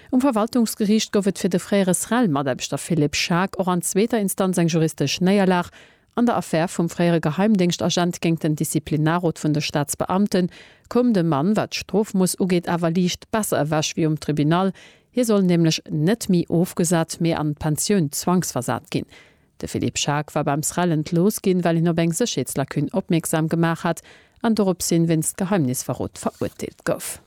Um Verwaltungsgeriicht gouf et fir de fréiere SREL-Mataarbechter Philippe Schaack och an zweeter Instanz eng juristesch Néierlag. An der Affär vum fréiere Geheimdéngschtagent géingt den Disziplinarrot vun de Staatsbeamten koum de Mann, wat d'Strofmooss ugeet, awer liicht besser ewech wéi um Tribunal. Hie soll nämlech net méi ofgesat, mee an d'Pensioun zwangsversat ginn. De Philippe Schaack war beim SREL entlooss ginn, well hien op eng Sécherheetslacune opmierksam gemaach hat an doropshin wéinst Geheimnisverrot verurteelt gouf.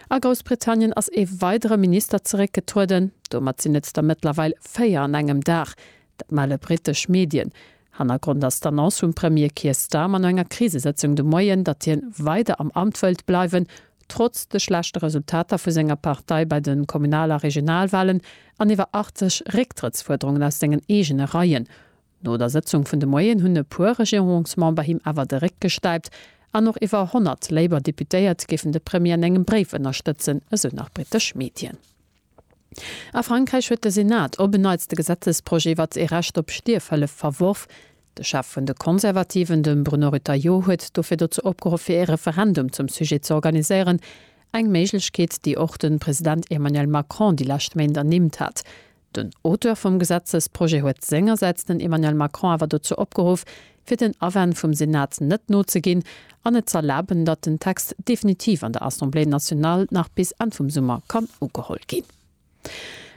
A Groussbritannien ass ee weidere Minister zeréckgetrueden. Domat sinn et der mëttlerweil véier an engem Dag. Dat melle brittesch Medien. Hannergrond ass d'Annonce vum Premier Keir Starmer no enger Krisesëtzung de Moien, datt hien weider am Amt wëllt bleiwen, trotz de schlechte Resultater vu senger Partei bei de Kommunal a Regionalwalen an iwwer 80 Récktrëttsfuerderungen aus sengen eegene Reien. No der Sëtzung vun de Moien hunn e puer Regierungsmember him awer de Réck gestäipt an och iwwer 100 Labour Deputéiert géifen de Premier an engem Bréif ënnerstëtzen, esou nach britesch Medien. A Frankräich huet de Senat op en Neits de Gesetzesprojet iwwert ee Recht op Stierfhëllef verworf. De Chef vun de Konservativen, de Bruno Retailleau, huet dofir dozou opgeruff fir ee Referendum zum Sujet ze organiséieren, eng Méiglechkeet déi och de President Emmanuel Macron déi lescht Méint ernimmt hat. Den Auteur vum Gesetzesprojet huet sengersäits den Emmanuel Macron awer dozou opgeruff, fir den Awänn vum Senat net nozeginn an et z'erlaben, datt den Text definitiv an der Assemblée nationale nach bis Enn vum Summer kann ugeholl ginn.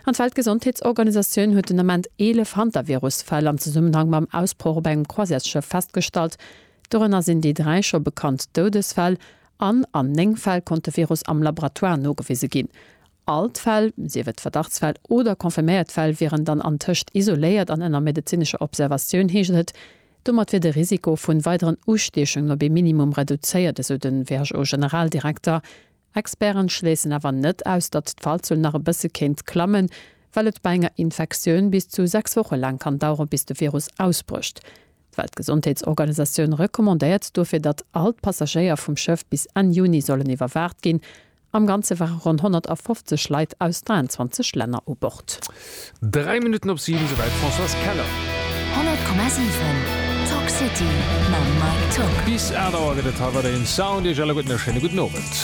An d'Weltgesondheetsorganisatioun huet den Ament 11 Hantavirus-Fäll am Zesummenhang mam Ausbroch op engem Croisièresschëff festgestallt. Dorënner sinn déi dräi scho bekannt Doudesfäll an an néng Fäll konnt de Virus am Laboratoire nogewise ginn. All d'Fäll, sief et Verdachtsfäll oder confirméiert Fäll, wieren dann antëscht isoléiert an ënner medezinescher Observatioun, heescht et. Domat wier de Risiko vu weideren Ustiechungen op ee Minimum reduzéiert, esou de WHO-Generaldirekter. Experten schléissen awer net aus, datt d'Fallzuel nach e bësse kéint klammen, well et bei enger Infektioun bis zu 6 Woche laang kann dauere bis de Virus ausbrécht. D'Weltgesondheetsorganisatioun recommandéiert dofir, datt all d'Passagéier vum Schëff bis Enn Juni sollen iwwerwaacht ginn, Am Ganze ware ronn 150 Leit aus 23 Länner u Bord. Dräi Minutten op siwen, esouwäit d'Françoise Keller. 100,7 Talk City mam Mike Tock. Bis 8 Auer gëtt et hei weiderhin Sound. Iech alleguerten e schéine gudden Owend.